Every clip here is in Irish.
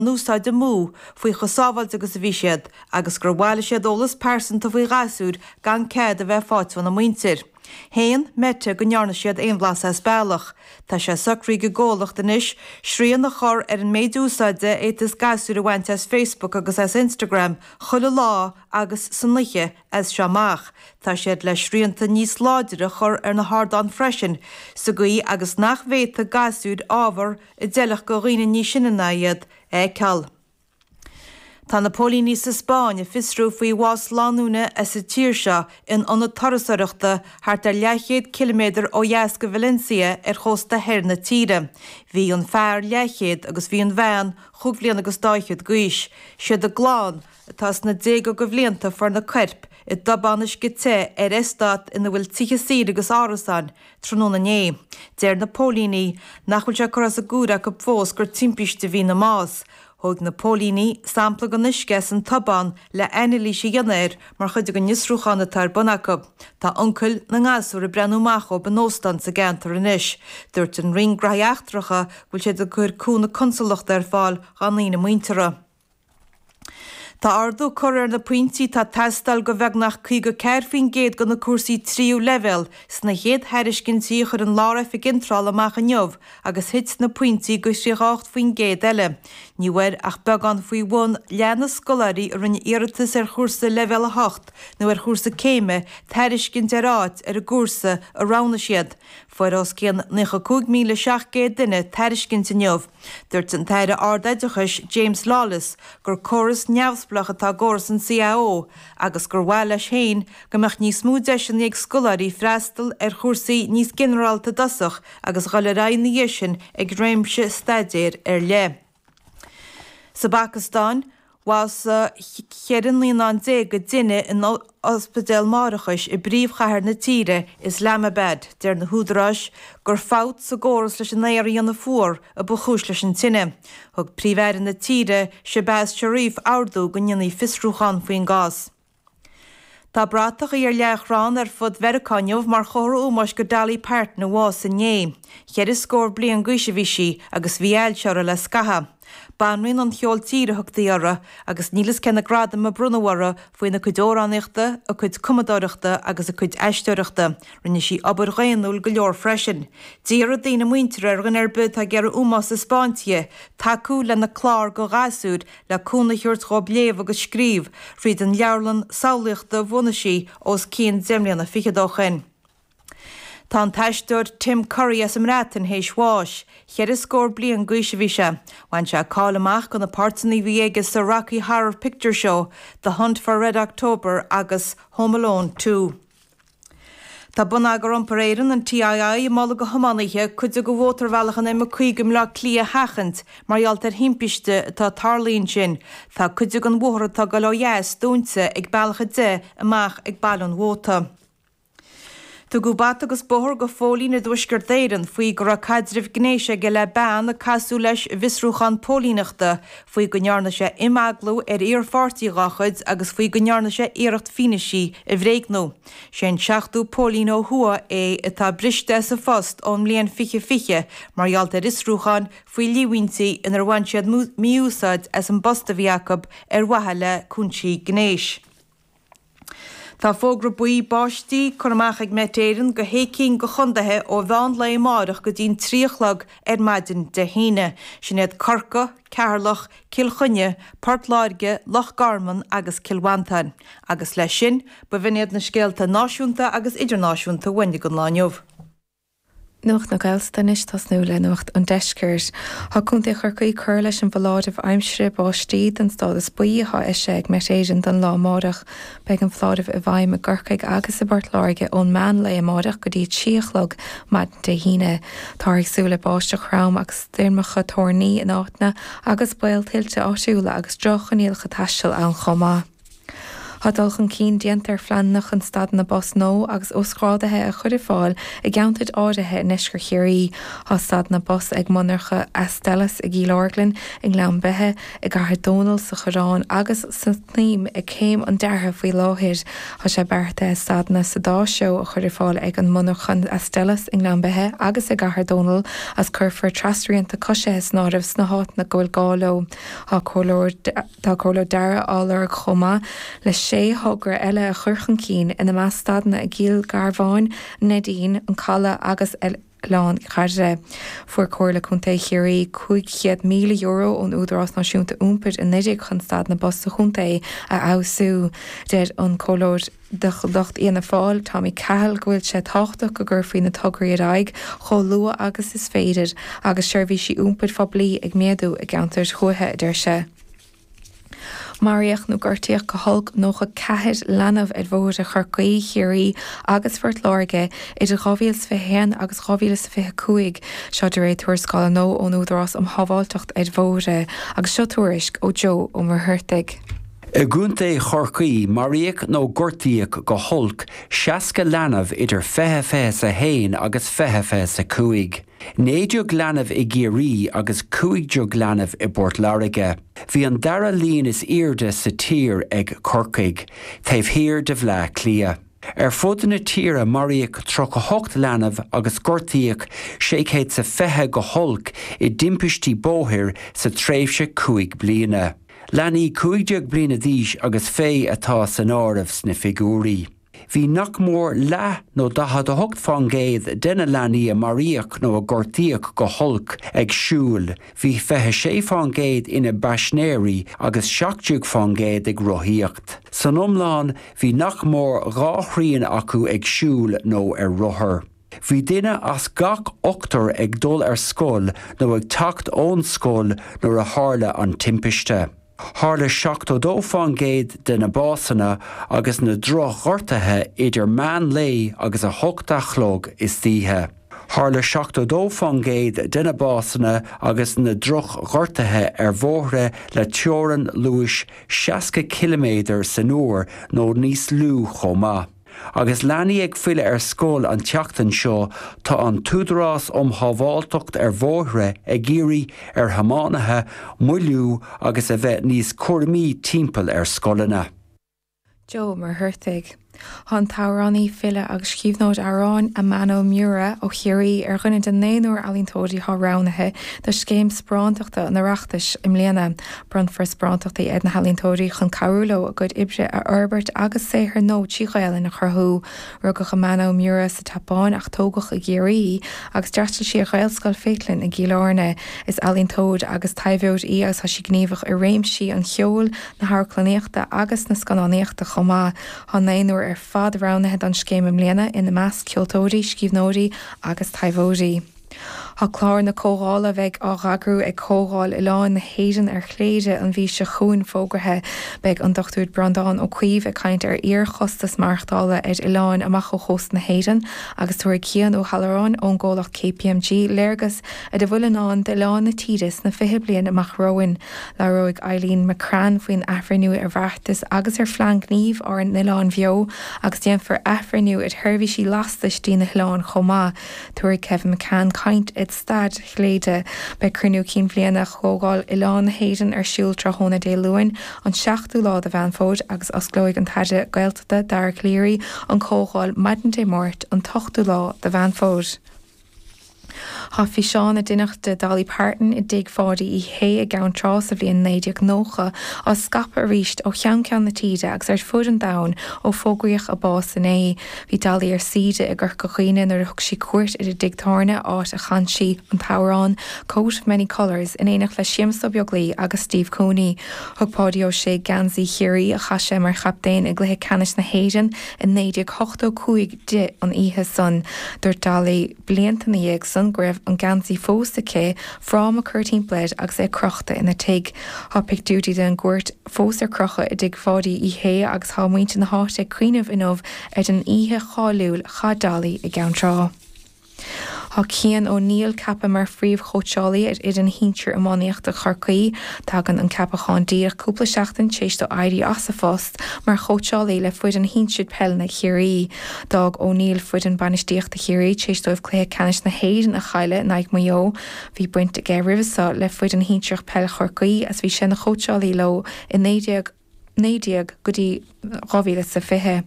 n-úsáid amú faoi chomh sábháilte agus a bhí siad agus gur bhailigh siad eolas pearsanta faoi ghasúir gan cead a bheith faighte óna muintir. Shéan Meta go ndearna siad aon bhlas as bealach. Tá sé socraithe ag an gcomhlacht anois srian a chur ar an méid úsáide a fhéadfas gasúir a bhaint as Facebook agus as Instagram chuile lá agus san oíche as seo amach. Tá siad le srianta níos láidre a chur ar na hardáin freisin sa gcaoi agus nach bhféadfaidh gasúir ábhar a d'fheilfeadh go dhaoine níos sine ná iad a fheiceáil. Tá na póilíní sa Spáinn ag fiosrú faoi bhás lánúine as an tír seo in ionad turasoireachta thart ar leathchéad ciliméadar ó dheas go Valencia ar chósta thoir na tíre. Bhí an fear, leathchéad, agus bhí an bhean, chúig bhliain agus dá fhichead d'aois. Siad a gclann, atá sna déaga go bhlianta, fuair na coirp i dtobán uisce te ar estát ina bhfuil tithe saoire agus árasáin tráthnóna inné. Deir na póilíní nach bhfuil sé curtha as an gcúir acu fós gur timpiste a bhí ina mbás. Thóg na póilíní sampla den uisce as an tobán le anailís a dhéanamh air mar chuid den fhiosrúchán atá ar bun acu. Tá uncail na ngasúr ag breathnú amach dóibh in óstán sa gceantar anois. Dúirt an Roinn Graithí Eachtracha go bhfuil siad ag cur cúnamh consalachta ar fáil dhá ndaoine muinteartha. Tá ardú curtha ar na pointí atá ag teastáil go bheagnach 54% de na cúrsaí tríú leibhéal sna chéad thairiscintí a chuir an Lár-Oifig Iontrála amach inniu agus thit na pointí go 38% eile, ní bhfuair ach beagán faoi bhun leath na scoláirí a rinne iarratas ar chúrsa Leibhéal 8 nó ar chúrsa céime tairiscint ar áit ar an gcúrsa a roghnaigh siad. Fuair os cionn 95,700 duine tairiscint inniu. Dúirt an tAire Ard-Oideachais James Lawless gur córas neamhspleach atá i gcóras an CAO agus gur mhaith leis féin go mbeadh níos mó deiseanna ag scoláirí freastal ar chúrsaí níos ginearálta i dtosach agus dhul ar aghaidh ina dhiaidh sin ag réimse staidéir ar leith. Sa bPacastáin, bhásaigh cheithre naíonán déag i dtine in ospidéal máithreachais i bpríomhchathair na tíre, Islamabad. Deir na húdaráis gur fabht sa gcóras leis an aer a dhéanamh fuar a ba chúis leis an tine. Thug Príomh-Aire na tíre, Shehbaz Sharif ordú go ndéanfaí fiosrúchán faoin gcás. Tá bratachaí ar leathchrann ar fud Mheiriceá inniu mar chomhartha ómóis go Dolly Parton a bhásaigh inné. Cheithre scór bliain d'aois a bhí sí agus bhí ailse uirthi le scaitheamh. Banríon an cheoil tíre a thugtaí uirthi agus níl fhios cé na gradaim a bronnadh uirthi faoina cuid amhránaíochta, a cuid cumadóireachta agus a cuid aisteoireachta. Rinne sí obair dhaonnúil go leor freisin. D'iarr a daoine muinteartha ar dhuine ar bith atá ag iarraidh ómós a thaispeáint di, tacú lena clár do ghasúir le cúnamh a thabhairt dhóibh léamh agus scríobh fríd an leabharlann samhlaíochta a bhunaigh sí os cionn deich mbliana fichead ó shin. Tá an t-aisteoir Tim Curry as an mBreatain théis bháis, cheithre scór bliain d'aois a bhí sé. Bhain sé cáil amach go na páirteanna a bhí aige sa Rocky Horror Picture Show, The Hunt for Red October agus Home Alone Two. Tá Bonneagar Iompair Éireann, an TII, ag moladh go thiománaithe cuid de mhótarbhealach an M50 i mBleá Cliath a sheachaint mar gheall ar thimpiste atá tarlaithe ansin. Tá cuid den bhóthar atá ag dul ó dheas dúnta ag bealach 10 amach ag Baile an Mhóta. Tugadh bata agus bóthar go phóilín i dTuaisceart Éireann faoi go raibh caidreamh gnéis aige le bean a casadh leis i bhfiosrúchán póilíneachta faoi go ndearna sé imeaglú ar iar-pháirtí dá chuid agus faoi go ndearna sé iarracht fianaisí a bhréagnú. Sé an seachtú póilín ó thuaidh é atá briste as a phost ón mbliain fiche fiche mar gheall ar fhiosrúcháin faoi líomhaontí inar bhain siad mí-úsáid as an bpost a bhí acu ar mhaithe le cúinsí gnéis. Tá fógra buí báistí curtha amach ag Met Éireann go shé cinn go chondaetha ó mheán lae amáireach go dtí'n trí a chlog ar maidin Dé hAoine. Sin iad Corcaigh, Ceatharlach, Cill Chainnigh, Port Láirge, Loch Garman agus Cill Mhantáin. Agus leis sin, b'in iad na scéalta náisiúnta agus idirnáisiúnta a bhain don lá inniu. Nuacht na Gaeltachta anois tosnú le nuacht an Deiscirt. Thá Contae Chorcaí curtha leis an bhfoláireamh aimsire báistí don stádas buí athá eisithe ag Met Éireann don lá amárach. Beidh an foláireamh i bhfeidhm i gCorcaigh agus i bPort Láirge ón meán lae amárach go dtí a trí a chlog maidin Dé hAoine. Táthar ag súil le báisteach throm agus stoirmeacha toirní in áiteanna agus baol tuilte áitiúla agus droch-choinníollacha taistil ann chomh maith. Tá dul chun cinn déanta ar phleananna chun stadanna bus nua agus uasghrádaithe a chuir ar fáil i gceantair áirithe i nDeisceart Chiarraí. Tá stadanna bus ag monarcha Astellas i gCill Orglan, i nGleann Beithe, i gCathair Dónall, sa Choireán agus sa tSnaidhm ag céim an deartha faoi láthair. Tá sé beartaithe stadanna sa dá threo a chuir ar fáil ag an monarcha Astellas i nGleann Beithe agus i gCathair Dónall is cuirfear trasrianta coisithe san áireamh sna háiteanna go bhfuil gá leo. Tá comhairleoir Tá comhairleoir deartha á lorg chomh maith le sé thogra eile a chur chun cinn, ina measc stadanna i gCill Gharbháin, Neidín, An Caladh agus Oileán Chiarraí. Fuair Comhairle Contae Chiarraí €500,000 ón Údarás Náisiúnta Iompair anuraidh chun stadanna bus sa chontae a fheabhsú. Deir an Comhairleoir. de lucht Fhianna Fáil, Tommy Cahill, go bhfuil sé tábhachtach go gcuirfí na tograí ar aghaidh chomh luath agus is féidir agus seirbhísí iompair phoiblí ag méadú i gceantair thuaithe, a deir sé. Maraíodh nó gortaíodh go holc 94 leanbh ar bhóithre Chorcaí, Chiarraí agus Phort Láirge idir 2021 agus 2025, seo de réir tuarascála nua ón Údarás um Shábháilteacht ar Bhóithre agus seo tuairisc ó Joe Ó Muircheartaigh. I gContae Chorcaí, maraíodh nó gortaíodh go holc 60 leanbh idir 20 21 agus 20 25. 19 leanbh i gCiarraí agus 15 leanbh i bPort Láirge. Bhí an dara líon is airde sa tír ag Corcaigh, taobh thiar de Bhleá Cliath. Ar fud na tíre maraíodh 38 leanbh agus gortaíodh 620 go holc i dtimpistí bóthair sa tréimhse cúig bliana. Leanaí 15 bliana d'aois agus fé atá san áireamh sna figiúirí. Bhí nach mór leath nó 48% de na leanaí a maraíodh nó a gortaíodh go holc ag siúl, bhí 26% ina bpaisinéirí agus 17% ag rothaíocht. San iomlán, bhí nach mór dhá thrian acu ag siúl nó ar rothar. Bhí duine as gach ochtar ag dul ar scoil nó ag teacht ón scoil nuair a tharla an timpiste. Tharla 72% de na básanna agus na droch-ghortuithe idir meán lae agus a hocht a' chlog istoíche. Tharla 72% de na básanna agus na droch-ghortuithe ar bhóithre le teorainn luais 60 ciliméadar san uair nó níos lú chomh maith. Agus leanaí ag filleadh ar scoil an tseachtain seo, tá an tÚdarás um Shábháilteacht ar Bhóithre ag iarraidh ar thiománaithe moilliú agus a bheith níos cúramaí timpeall ar scoileanna. Joe Ó Muircheartaigh. Tá an t-amhránaí, file agus scríbhneoir amhráin Amano Miura ó Chiarraí ar dhuine de naonúr ealaíontóirí atá roghnaithe do Scéim Sparántachta an Oireachtais i mbliana Bronnfar sparántachtaí ar na healaíontóirí chun cabhrú leo a gcuid oibre a fhorbairt agus saothar nua trí Ghaelainn a chruthú. Rugadh Amano Miura sa tSeapáin ach tógadh i gCiarraí í agus d'fhreastail sí ar Ghaelscoil Faithleann i gCill Airne. Is ealaíontóir agus taibheoir í agus tá sí gníomhach i réimsí an cheoil, na hamharclannaíochta agus na scannánaíochta chomh maith. Tá naonúr ar fad roghnaithe don scéim i mbliana, ina measc, ceoltóirí, scríbhneoirí agus taibheoirí. Tá clár na comhdhála a bheidh á eagrú ag Comhdháil Oileáin na hÉireann ar Chléire an mhí seo chugainn fógraithe. Beidh an Dr. Breandán Ó Caoimh ag caint ar fhíor-chostas maireachtála ar oileáin amach ó chósta na hÉireann agus tabharfaidh Cian Ó hAlluráin ón gcomhlacht KPMG léargas ar a bhfuil i ndán d'oileáin na tíre sna fiche bliain amach romhainn. Labhróidh Eileen McCrann faoin athbhreithniú ar bheartas agus ar phlean gnímh Ár nOileáin Bheo agus déanfar athbhreithniú ar sheirbhísí lastais dtí na hoileáin chomh maith. Tabharfaidh Kevin McCann caint ar stair Chléire. Beidh Cruinniú Cinn Bhliana Chomhdháil Oileáin na hÉireann ar siúl tráthnóna Dé Luain an 7ú lá de Mheán Fómhair agus osclóidh an tAire Gaeltachta Dara Calleary an Chomhdháil maidin Dé Máirt an t-ochtú lá de Mheán Fómhair. Tá físeán a deineadh de Dolly Parton i dTigh Pháidí Uí Shé i gCeann Trá sa bhliain 1990 á scaipeadh arís ó cheann ceann na tíre agus ar fud an domhain ó fógraíodh a bás inné. Bhí Dolly ar saoire i gCorca Dhuibhne nuair a thug sí cuairt ar an dtigh tábhairne áit a chan sí an t-amhrán 'Coat of Many Colours' in éineacht le Séamus Ó Beaglaoich agus Steve Cooney. Thug Páidí Ó Sé geansaí Chiarraí a chaith sé mar chaptaen i gcluiche ceannais na hÉireann i 1985 di an oíche san. Dúirt Dolly. Blianta ina dhiaidh san go raibh an geansaí fós aici, fráma curtha timpeall air agus é crochta ina tigh. Tá pictiúirí den gcuairt fós ar crochadh i dtigh Pháidí Uí Shé agus tá muintir na háite ag cuimhneamh inniu ar an oíche cháiliúil a chaith Dolly i gCeann Trá. Tá Cian O'Neill ceaptha mar phríomhchóitseálaí ar fhoireann shinsir iománaíochta Chorcaí. Tagann an ceapachán díreach cúpla seachtain t'éis dó éirí as a phost. Mar chóitseálaí le foireann shinsir peile na Chiarraí, d'fhág O'Neill foireann bainistíochta Chiarraí tar éis dóibh Cluiche Ceannais na hÉireann a chailleadh in aghaidh Maigh Eo. Bhí baint aige roimhe seo le foireann shinsearach peile Chorcaí agus bhí sé ina chóitseálaí leo i 1919 go dtí 2020.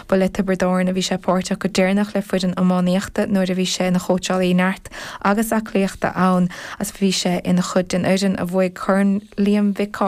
Ba le Tiobraid Árann a bhí sé páirteach go deireanach le foireann iománaíochta nuair a bhí sé ina chóitseálaí neart agus aclaíochta ann agus bhí sé ina chuid den fhoireann a bhuaigh Corn Liam Mhic